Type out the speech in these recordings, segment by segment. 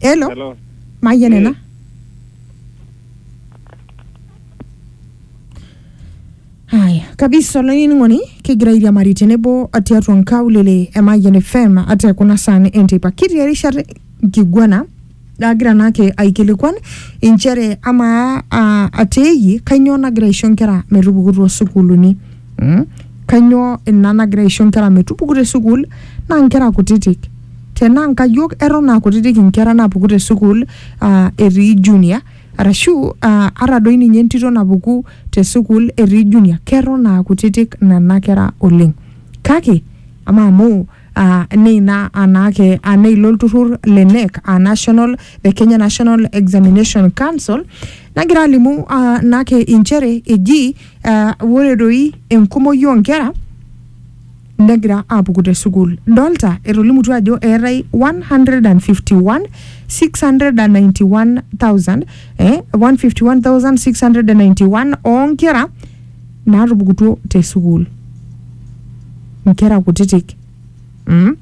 Hello. Hello. Mayian ena. Haya, kabisa olainining'oni kigira airiamari tenebo tiatua nkaulele e Mayian FM ate kuna saan enteipa. Kitii erishata nkiguana Agira naake aikilikuan inchere amaa ah, atiiki kainyoo nagira aisho nkera metupuku too sukuuluni mm? kainyoo ina nagira aisho nkera metupuku te sukuul naa nkera kutitik tenaa nkayiok eton aa kutitik inkera naapuku te sukuul ah, etii junior arashu ah, ata doi ninye entito napuku te sukuul etii junior keton aa kutitik nena kera oleng kake amaa amu aa neina anaake aa neilo olturrur le NEC aa National the Kenya National Examination Council nagira alimu aa naake inchere eji aa ore doi enkumoi oonkera negira aapuku te sukuul. Dolta etolimutuo ajo eetae 151,691,000 eh 151,691 oonkera naatupukutuo te sukuul. Inkera kutitik mm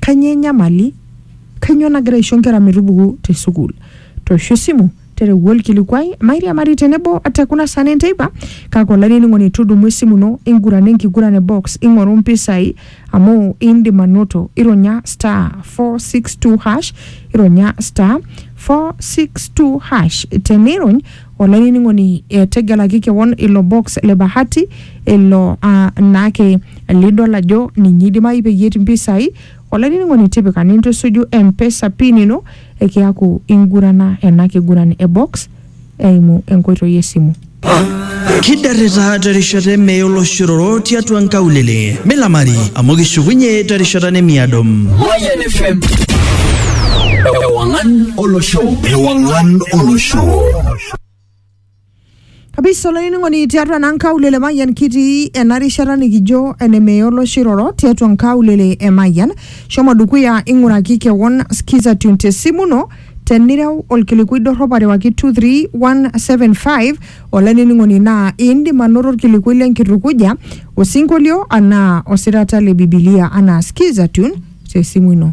kanyoo enyamali? Kanyoo nagira aisho inkera metupuku te sukuul? Toosho esimu tereu olkilikuai mairiamari tenebo te kuna saa ne nteipa kake olainining'oni tudumu esimu ino ingurana enkiguran e box ing'oru mpisai amu indim anoto ironya star 462 hash ironya star 462 hash tenirony Olainining'oni, tegelaki kewon ilo box le bahati ilo aa naake lidol ajo ninye eidimayu peyie etii mpisai. Olainining'oni, tipika nintusuju M-pesa pin ino kiaku ingurana ena kiguran e box eimu enkoitoi e simu. Kidarrita terishata e mee oloshororo tiatua nkaulele. Milamari amu kishukunye terishata nemiado. Mayian FM. Ewang'an. olosho ewang'an olosho kabisa olainining'oni tiatua naa nkaulele mayian kitii ena rishata nikijo enemeye olosho iroro tiatua nkaulele e mayian shomo dukuya ing'uraki kewon skiza tune te simu ino tenireu olkilikui dorrop arewaki 23175 olainining'oni naa indim anoto olkilikui lenkitukuja osinkolio anaa osirata le bibilia anaa skiza tune te simu ino